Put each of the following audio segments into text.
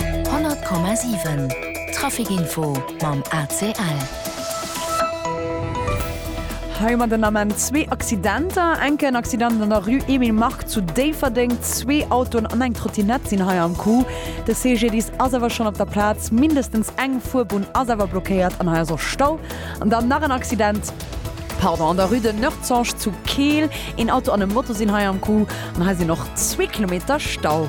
100,7 Trafic Info mam ACL. Hei mat den Ament zwee Accidenter. Enke en Accident an der Rue Emile Mark zu Déifferdeng. Zwee Autoen an eng Trottinett sinn hei am Coup. De CGDIS ass awer schonn op der Plaz. Mindestens eng Fuerbunn ass awer blockéiert an hei ass och Stau. An dann nach en Accident. Pardon, an der Rue de Noertzange zu Keel. Een Auto an e Moto sinn hei am Coup an hei sinn och zwee Kilometer Stau.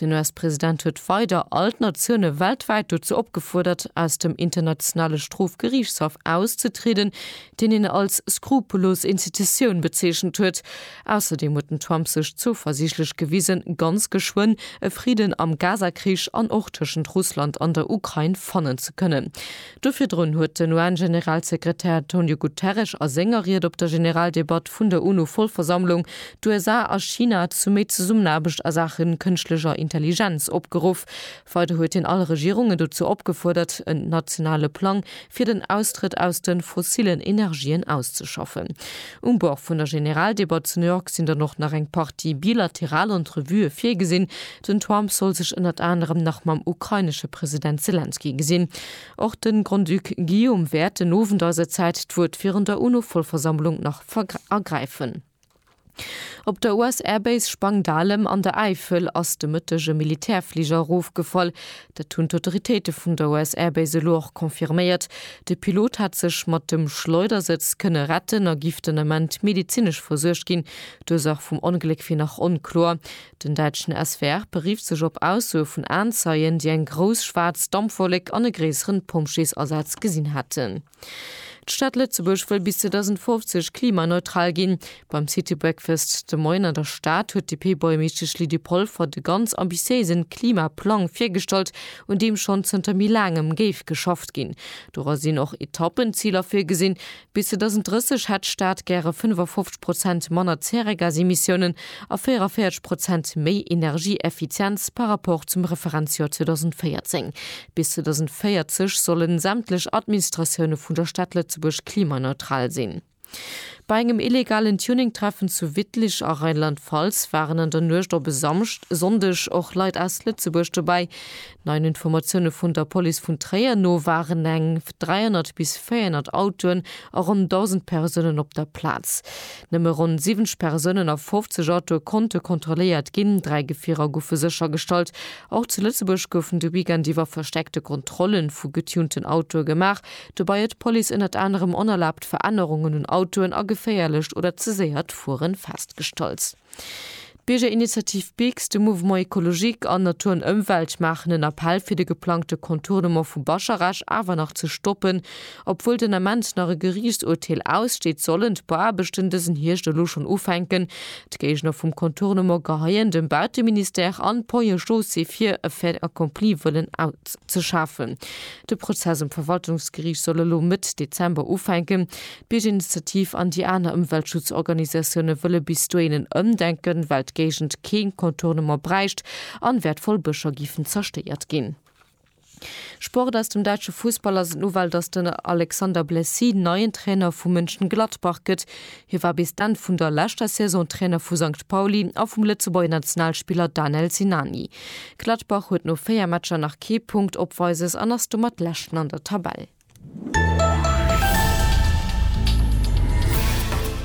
Den US-President huet weider all d'Natioune weltwäit dozou opgefuerdert, aus dem Internationale Strofgeriichtshaff auszetrieden, deen hien als skrupulos Institutioun bezeechent huet. Ausserdeem huet den Trump sech zouversiichtlech gewisen, ganz geschwënn e Fridden am Gaza-Krich an och tëschent Russland an der Ukrain fannen ze kënnen. Do virdrun huet den UN-Generalsekretär Antonio Guterres a senger Ried op der Generaldebatt vun der UNO-Vollversammlung d'USA a China zu méi Zesummenaarbecht a Saache kënschtlecher Intelligenz opgeruff. Weider huet hien all Regierungen dozou opgefuerdert, en nationale Plang fir den Austrëtt aus de fossillen Energien auszeschaffen. Um Bord vun der Generaldebatt zu New York sinn dann och nach eng Partie bilateral Entrevuë virgesinn, Den Trump soll sech ënnert anerem nach mam ukrainesche President Selenskyj gesinn. Och de Grand-Duc Guillaume wäert den Owend eiser Zäit d'Wuert virun der UNO-Vollversammlung nach ergräifen. Op der US-Air-Base Spangdahlem an der Äifel ass de Mëtteg e Militärfliger erofgefall. Dat hunn d'Autoritéite vun der US-Air-Base elo och confirméiert. De Pilot hat sech mat dem Schleudersëtz kënne retten a giff den Ament medezinesch versuergt ginn. D'Ursach vum Ongléck wier nach onkloer. Den däitschen SWR berifft sech op Aussoe vun Aenzeien, déi eng grouss schwaarz Dampwollek an e gréisseren Pompjeesasaz gesinn hätten. D'Stad Lëtzebuerg wëll bis 2050 klimaneutral ginn. Beim City Breakfast de Moien an der Stad huet d'DP-Buergermeeschtesch Lydie Polfer de ganz ambitiéisen Klimaplang virgestallt, un deem schonn zënter méi laangem géif geschafft ginn. Dora sinn och Etappenziler virgesinn, Bis 2030 hätt d'Stad gäre 55 Prozent manner Zäregasemissiounen a 44 Prozent méi Energieeffizienz par rapport zum Referenzjoer 2014. Bis 2040 sollen sämtlech Administratioune vun der Stad Lëtzebuerg klimaneutral sinn. Bei engem illegalen Tuning-Treffen zu Wittlich a Rheinland-Pfalz waren an der Nuecht op e Samschd, Sonndeg och Leit aus Lëtzebuerg dobäi. Neien Informatioune vun der Police vun Tréier no waren eng 300 bis 400 Autoen a ronn 1.000 Persounen op der Plaz. Nëmme ronn 70 Persounen a 50 Autoe konnte kontrolléiert ginn. Dräi Gefierer goufe séchergestallt. Och zu Lëtzebuerg goufen de Weekend iwwer verstäerkte Kontrolle vu getunten Autoe gemaach. Dobäi huet d'Police ënnert anerem onerlaabt Verännerungen un Autoen a geféierlecht oder ze séiert Fueren festgestallt. D'Biergerinitiativ Biks, de Mouvement Ecologique an Natur an Ëmwelt maachen en Appell fir de geplangte Contournement vu Bascharech awer nach ze stoppen. Obwuel den Ament nach e Geriichtsurteel aussteet, sollen d'Bauaarbechten dësen Hierscht elo schonn ufänken. D'Géigner vum Contournement geheien dem Bauteministère an d'Ponts et Chaussées vir, e Fait accompli wëllen auszeschafen. De Prozess um Verwaltungsgeriicht soll elo Mëtt Dezember ufänken. D'Biergerinitiativ an déi aner Ëmweltschutzorganisatioune wëlle bis dohin en Ëmdenken, well d'Géigend kee Contournement bräicht an wäertvoll Bëscher géifen zerstéiert ginn. Sport Aus dem däitsche Fussball ass et d'Nouvelle, datt den Alexander Blessy neien Trainer vu Mönchengladbach gëtt. Hie war bis d'Enn vun der leschter Saison Trainer vu Sankt Pauli a vum Lëtzebuerger Nationalspiller Danel Sinani. Gladbach huet no 4 Matcher nach kee Punkt opweises an ass domat Leschten an der Tabell.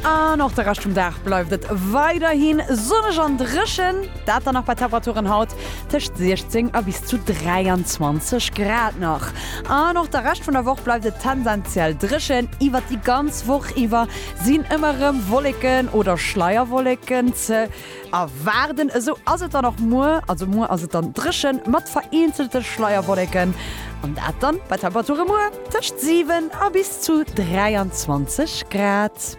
An och de Rescht vum Dag bleift et weiderhi sonneg an dréchen, dat dann nach bei Temperaturen haut tëscht 16 a bis zu 23 Grad nach. An och de Rescht vun der Woch bleift et tendenziell dréchen. Iwwert déi ganz Woch iwwer sinn ëmmer erëm Wolleken oder Schleierwolleken ze A waarden, esou ass et dann och muer. Also muer ass et dann dréchen, mat vereenzelte Schleierwolleken, an dat dann bei Temperature muer tëscht 7 a bis zu 23 Grad.